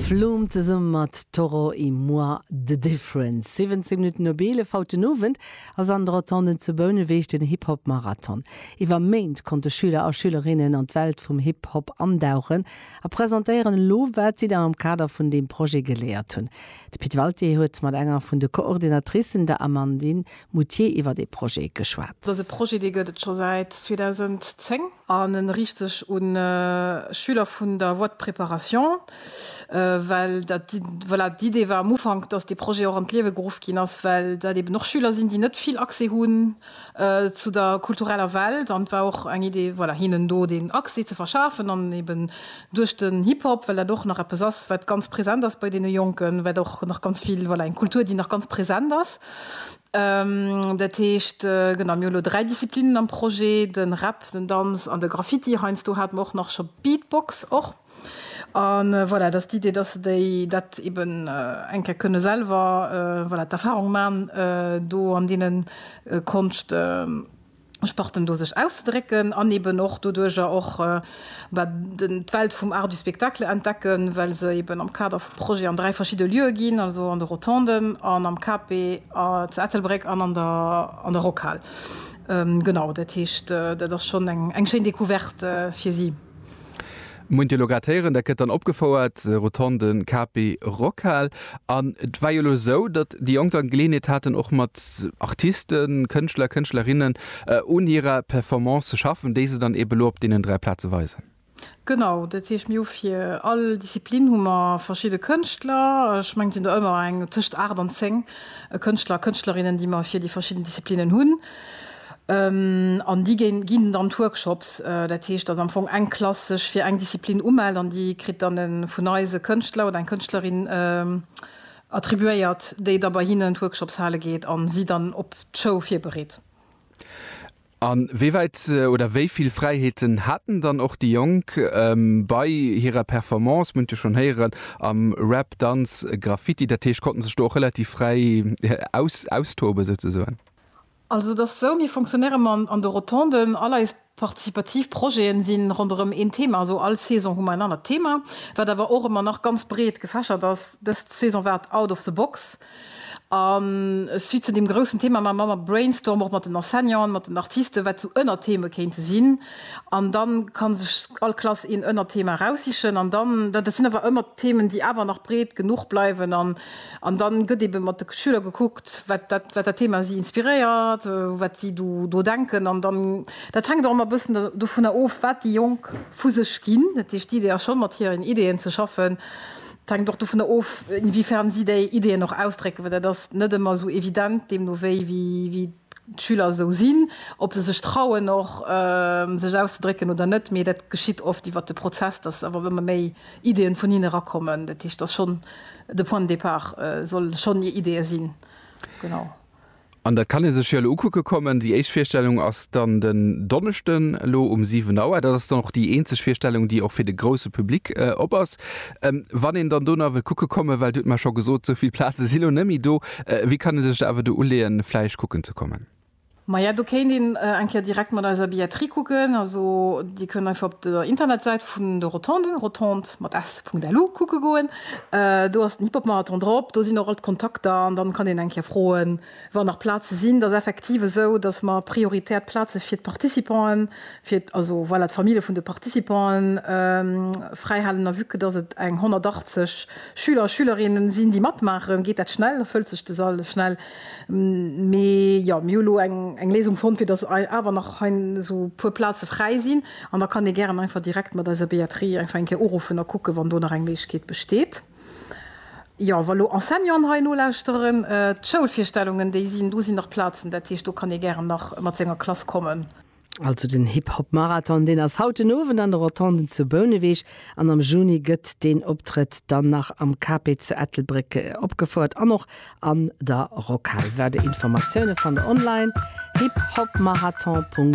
Flume zesumme mat Toro y moi, The Difference. 17 Minutten op 11 haut den Owend ass an de Rotonden zu Bouneweg den Hip Hop Marathon. Iwwer Méint konnte Schüler a Schülerinnen an d'Welt vum Hip Hop andauchen a presentéieren elo wat si dann am Kader vun deem Projet geléiert hunn. De Pit Walté huet mat enger vun de Coordinatricen, der Amandine Moutier iwwert ee Projet geschwat. Dëse Projet, dee gëtt et scho säit 2010 an e riicht sech u Schüler vun der Voie de préparation, well dat, voilà, d'Idee war am Ufank, dass dee Projet och an d'Liewe geruff ginn ass, well dat eeben och Schüler sinn, déi net vill Accès hunn zu der kultureller Welt. An et war och eng Idee, voilà, hinnen do deen Accès ze verschafen an eeben duerch den Hip-Hop, well dat och nach eppes ass, wat ganz present ass bei deene Jonken, wat och nach ganz vill, voilà, eng Kultur, déi nach ganz present ass. Dat heescht, genau, mir hu lo dräi Disziplinen am Projet, de Rap, den Danz an de Graffiti. Heiansdo hate mer och nach scho Beatbox och. A voilà, dat ass d'Idee, dass se déi, dat eeben eng Kéier kënne selwer, voilà, d'Erfahrung man do an deene Konscht, Sparten do sech auszedrécken an eben och doduerjer och d'Welt vum Art du spectacle entdecken, well se eben am Kader vu Projeten an dräi verschidde Lieue ginn, also an de Rotonden an am KP zu Ettelbréck an an der Rockhal. Genau, dat heescht, dat ass schonn eng schéin Decouverte fir si. Muent elo grad héieren, dat gëtt dann opgefouert, Rotonde Capi Rockhal. An et war jo elo esou, datt déi Jonk dann d'Geleeënheet haten och mat Artisten, Kënschtler, Kënschtlerinnen un hirer Performance ze schaffen, déi se dann eben elo op deenen 3 Plaze weisen. Genau, dat heescht mir hu fir all Disziplin hu mer verschidde Kënschtler, ech mengen et sinn der ëmmer eng tëscht 8 an 10 Kënschtler a Kënschtlerinnen, déi mer fir déi verschidden Disziplinnen hunn. An déi ginn dann d'Workshops. Dat heescht, datt am Fong eng Klass sech fir eng Disziplin umellt an déi kritt dann e vun eis e Kënschtler oder eng Kënschtlerin attribuéiert, déi da bei hinnen d'Workshops hale geet a si dann op d'Show virbereet. A wéi wäit oder wéi vill Fräiheeten haten dann och déi Jonk bei hirer Performance, mir hunn et jo schonn héieren, am Rap, Danz, Graffiti, dat heescht, konnte sech do och relativ fräi austoben souzesoen? Also et ass esou, mir fonctionnéiere mer an de Rotonden. All eis participativ Projete si ronderëm een Thema, also all Saison hu mer en anert Thema, wat awer och ëmmer nach ganz breet gefächert ass. Dës Saison war et Out of the Box. A suite zu deem groussen Thema maache mer ëmmer Brainstorm, och mat den Enseignanten, mat den Artisten, wat esou Ënnertheme kéinte sinn. An da ka sech all Klass een Ënnerthema eraussichen. An dann, dat sinn awer ëmmer Themen, déi awer nach breet genuch bleiwen. An An dann gëtt eben mat de Schüler gekuckt, wat dat Thema si inspiréiert, wat si do denken. An dann, dat hänkt och ëmmer e bëssen dovunner of, wat déi Jonk vu sech ginn. Dat heescht, d'Idee ass schonn, mat hiren Ideeën ze schaffen. Et hänkt och dovunner of, inwiefern si déi Ideeën och ausdrécken, well dat ass net ëmmer esou evident, deemno wéi d'Schüler esou sinn, ob se sech trauen och sech auszedrécken oder net. Mee dat geschitt oft iwwer de Prozess, dass awer ëmmer méi. Ideen vun hinne rakommen. Dat heescht, dass schonn de Point de départ soll schonn Idee sinn. Genau. An dat kann ee sech jo elo ukucke kommen. Déi éischt Virstellung ass dann den Donneschden elo um 7 Auer. Dat ass dann och déi eenzeg Virstellung, déi och fir de grousse Public op ass. Wann een dann do nach wëll kucke kommen, well Dir hutt mer scho gesot, esou vill Plaze si lo net méi do, wéi kann ee sech da awer do uleeën, vläicht kucken ze kommen? Maja, do kéint een eng Kéier direkt mat eiser Billetterie kucken. Also Dir kënnt einfach op der Internetsäit vun de Rotonden, rotondes mat s, .lu, kucke goen. Do ass den Hip-Hop-Marathon drop. Do sinn och all d'Kontakter an dann kann een eng Kéier froen, wann nach Plaze sinn. Et ass effektiv esou, dass mer prioritär d'Plaze fir d'Participanten, fir, also voilà, d'Famille vun de Participanten fräihalen. A vue que dass et eng 180 Schüler a Schülerinnen sinn, déi matmaachen, geet dat schnell, da fëllt sech de Sall schnell. Mee jo, mir hu lo eng Léisung fonnt, fir dass awer nach hei esou e puer Plaze fräi sinn. An da kann ee gären einfach direkt mat eiser Billetterie einfach eng Kéier uruffen a kucken, wann do nach eng Méiglechkeet besteet. Jo, wa lo Enseignanten hei nolauschteren, d'Schoulvirstellungen, déi sinn, do sinn nach Plazen. Dat heescht, do kann ee gären nach mat senger Klass kommen. Also den Hip-Hop-Marathon, deen ass haut den Owend an de Rotonden zu Bouneweg an am Juni gëtt deen Optrëtt dann nach am KP zu Ettelbréck opgefouert an och an der Rockhal. Weider Informatioune fannt der online, hiphopmarathon.lu.